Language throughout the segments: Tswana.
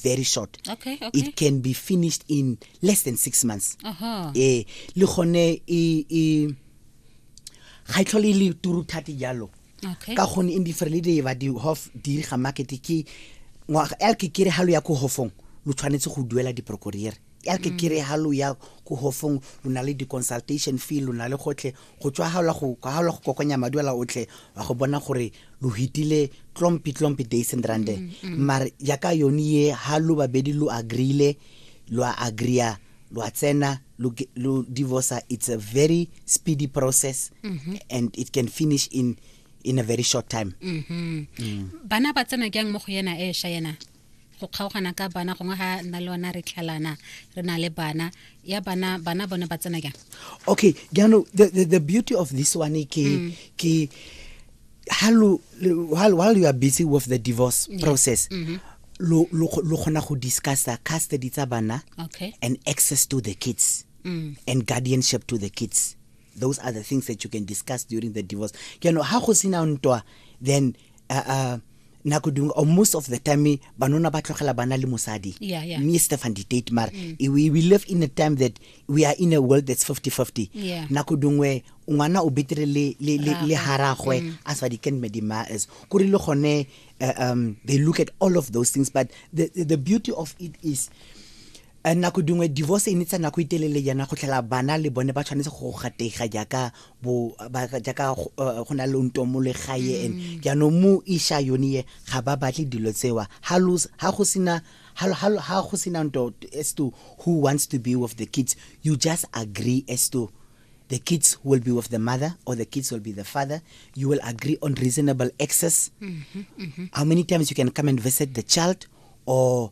very short okay, okay. it can be finished in less than six months uh -huh. eh le gone e e ga e tlhole e le turu thate jalo okay. ka gone in different le di ba di hof di ga market ke ngwaga el ke kere halo ya ko hofong lo tshwanetse go duela di procureur el ke mm. kere halo ya ko hofong lo na le di consultation fee lo na le gotlhe Go tšwahaola go kwahaola go kokonya maduela otle wa go bona gore lo hitile tlompi tlompi deisendrand mm, mm. mare yaka yone ye ha lo babedi lo agreeile lo a agreea lo a tsena lo divorce it's a very speedy process mm -hmm. and it can finish in in a very short time mm -hmm. mm. bana ba tsena kyang mo go yena e sha yena go kgaogana ka bana gongwe ga nna le ona re tlhalana re na le bana ya bana bana bone ba tsena jang okay jaanong the, the, the beauty of this one ke mm. ke halo while, while you are busy with the divorce yeah. process mm -hmm. lo lo lo khona go discussa custody tsa bana okay. and access to the kids mm. and guardianship to the kids those are the things that you can discuss during the divorce you know ha go sina ntwa then uh, uh, nako dingwe or most of the time banona ba tlogela bana le mosadi yeah, yeah. me stefan didate mara mm. we, we live in a time that we are in a world that's 50-50 yeah. nako dingwe ngwana o betere le, le, le, le haragwe mm. as what he can medima is kore le gone uh, um, they look at all of those things but the, the beauty of it is Eh, nako dingwe divorce e netsa nako e telele yana go tlhela bana le bone ba tshwanetse go gatega jaaka bo ba jaaka go eh, go na le onto mo legae and Mm. jaanong mo isha yone ye ga ba batle dilo tsewa ha lo s- ha go sena ha lo- ha lo- ha go sena nto as to who wants to be with the kids you just agree as to the kids will be with the mother or the kids will be the father you will agree on reasonable access Mm-hmm, how many times you can come and visit the child or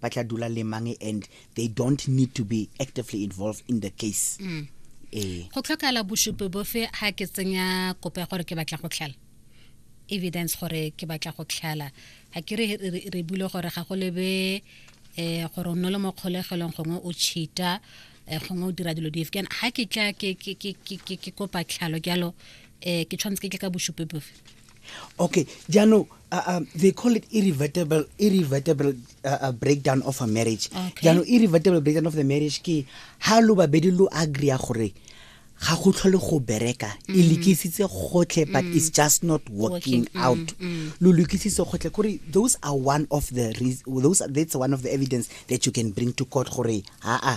ba tla dula le mang and they don't need to be actively involved in the case mm. ee go tlhokala bosupi bofe ha ke tsenya kopo ya gore ke batla go tlhala evidence gore ke batla go tlhala ga ke re re bule gore ga go lebe um gore o nne le mo kgolegelong gongwe o cheata eh, gongwe o dira dilo dife kana ga ke tla ke kopa tlhalo jalo um ke tshwanetse ke tle ka bosupi bofe okay jaanong uh, uh, they call it irrevertible, irrevertible uh, uh, breakdown of a marriage Okay. jaanong irrevertible breakdown of the marriage ke ha lo babedi lo agree gore ga go tlhole go bereka e lekisitse gotlhe but it's just not working out lo lokisitse gotlhe kore those are one of the reas- those are, that's one of the evidence that you can bring to court gore aa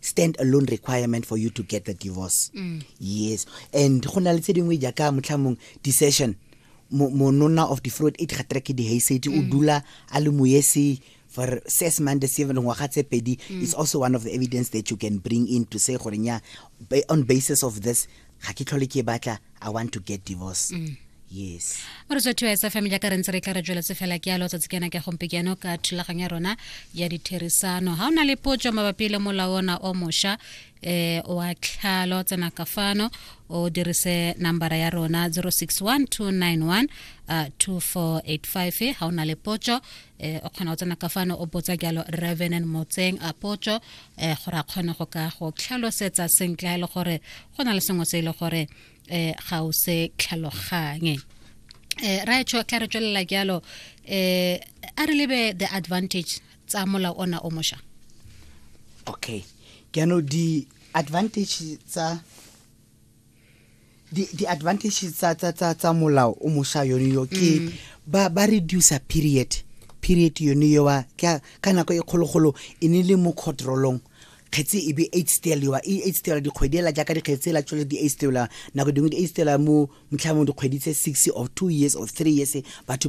stand alone requirement for you to get the divorce mm. yes and go na le tse dingwe jaaka motlhamong decision monona of the fruit e gatera ke dihaisedi o mm. dula a le moese for six months seven ngwaga tse pedi mm. is also one of the evidence that you can bring in to say gore nya on basis of this ga ke tlhole ke batla i want to get divorce mm. yes re tswa thuwa sa family ka re ntse re tla re tsweletse fela ke alo tsatsi kena ke gompe keno ka thulaganyo ya rona ya ditherisano ha ona le potso mabapi le molao ona o mosha eh wa tlhalo tsena ka fano o dirise nambara ya rona 061291 uh, 2485 ha ona le potso eh o kgona go tsena ka fano o botsa jalo revenant motseng a potso eh gore a kgone go ka go tlhalosetsa sentle e le gore go na le sengwe se e le gore eh ga o se tlhaloganye eh ra etsho tla re tswelela jalo eh a re lebe the advantage tsa molao ona o mosha okay ke no di advantage tsa di di advantages tsa tsa tsa tsa molao o mosha yone yo ke mm. ba ba reduce period period yone yo wa ka ka nako e kgologolo e ne le mo controlong kgetse e be eight stela yowa e eight stela dikgwedi ela jaaka dikgetse ela tsole di eight stela nako dingwe di eight stela mo motlha mo dikgwedi tse six of two years of three years batho